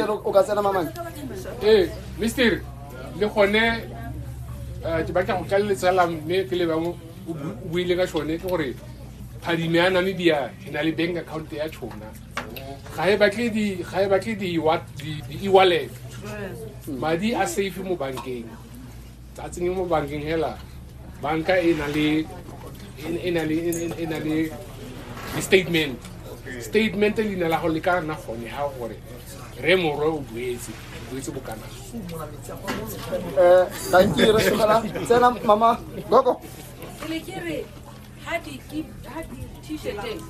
o ka tsena mamane ee mister le gone eh, ke batla go kaleletsa la mme pele bangwe o buile ka sone ke gore phadime ya namibia e na le bank account ya tšhona ga e batle di-e-wallet e madi a safe mo bankeng tsa tsenye mo bankeng hela banka e na le e na le e na le statement statement le ina la go le ka nna gone ha gore re morwe o boetse boetse bokana eh thank you re tsena mama gogo ha di keep ha di t-shirt teng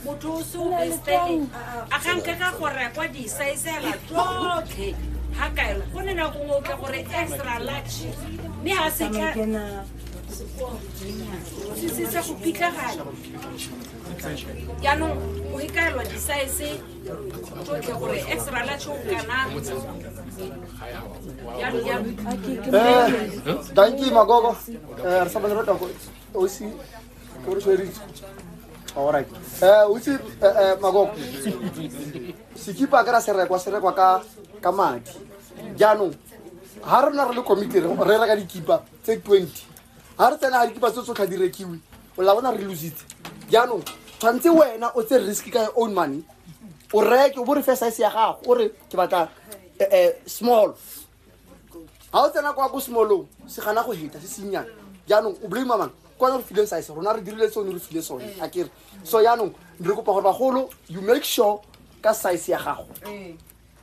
motho o se o besteng a ga nke ka go rekwa disaisela tsotlhe ga kae go ne nako ngwe o tla gore extra large mme ga se ka se se sa go pitlagala jaanong o ikaelwa disaese danki magogo eh, re sa bane rota ko osi ko re tshweritse all right eh o itse eh, eh, magogo sekipa ka ra se rekwa se rekwa ka ka madi jaanong ha rona re le committee re reka dikipa tse 20 ga re tsena a re kipa tse tsotlha di rekiwe o la bona re lositse jaanong tshwanetse wena o tse risk ka your own money o reke o bo re fe size ya gago o re ke batla eh, eh, small ga o tsena kwa ko smallong se gana go heta se sennyana jaanong o blame mang kwana re fileng size rona re dirile tsone re file sone a kere so jaanong re kopa gore bagolo you make sure ka size ya gago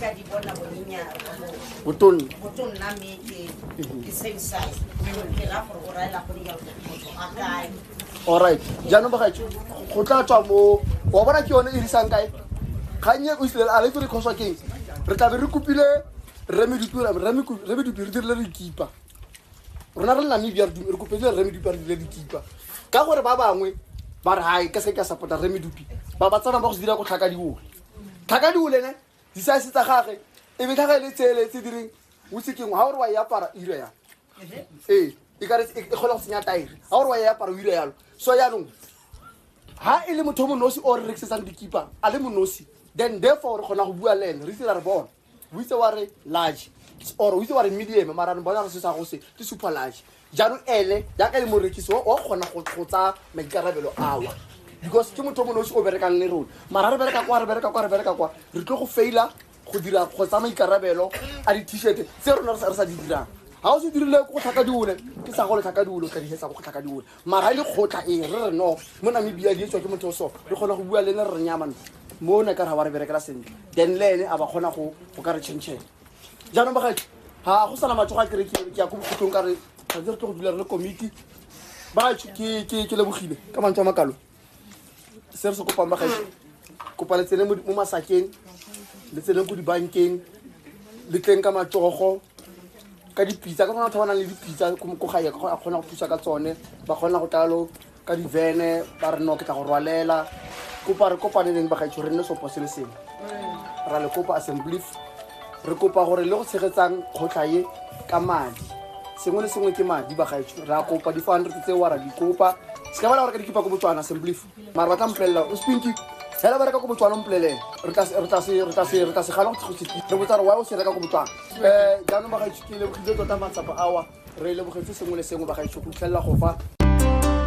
ka di bona bonyenyaa botonna botonna mme ke ke same size ke ra gore o raela go dira motho a kae alright jaanong bagaetsho go tla tswa mo wa bona ke yone e risang kae kgannye o isile a letse re khoswa keng re tlabe re kopile remedupi re dirile dikipa rona re le namibia re kopedile remedupi re dirile dikipa ka gore ba bangwe ba re gae ka se ke a support-a remedupi ba ba tsamaya ba go se dira go tlhaka diole tlhaka diolene disase tsa gage e be tlhaga e le tsele tse direng o sekeng ga gore wa e apara ira ya ee e kare e kgole go senya taere ga gore wa e apara o ira yalo so yaanong ha e le motho o monosi o re rekisetsang dikipa a le monosi then therefore re kgona go bua le ene re itse ra re bona o itse wa re large or o itse wa re medium mara re bona re se sa go se ke super large jaanong ene jaaka le morekisi wa kgona go tsaya maikarabelo awa because ke motho o mo nosi o berekang le rona mara re bereka kwa re bereka kwa re bereka kwa re tlo go faila go dira go tsaya maikarabelo a di-t-shirt tse rona re sa di dirang ga o se dirile go tlhaka diole ke sa go le tlhaka diole o tla dihetsa go tlhaka diole mara le kgotla e re re no mo namibia di etswa ke motho o so re kgona go bua le ene re re nyamane mo ne ka ra wa re berekela sentle then le ene a ba kgona go go ka re changela jaanong bagae ga go sana matsogo a kere ke ke ya ko bokhutlong ka re tshwanetse re tlo go dula re le komiti bagae ke ke ke lebogile ka mantswe a makalo se re se kopang bagaetsho kopa le tsene mo mo masakeng le tsene ko dibankeng le tleng ka matsogo ka dipitsa ka gona batho ba nang le dipitsa ko ko gae a kgona go thusa ka tsone ba kgona go tlalo ka divene ba re no ke tla go rwalela kopa re kopaneleng bagaetsho re nne sopo se le sengwe ra le kopa assemblief re kopa gore le go tshegetsang kgotlha e ka madi sengwe le sengwe ke madi bagaetsho re a kopa di-four hundred tseo ra di kopa se ka ba la gore ka dikipa ko botswana assemblief mara ba tla mpolelela o spinki fela ba reka ko botswana mpolelele re tla se gana go re botsa re wa o se reka ko botswana um eh, jaanong bagaetsho ke lebogile tota matsapa awa re lebogetse sengwe le sengwe bagaetsho go fitlhelela go fa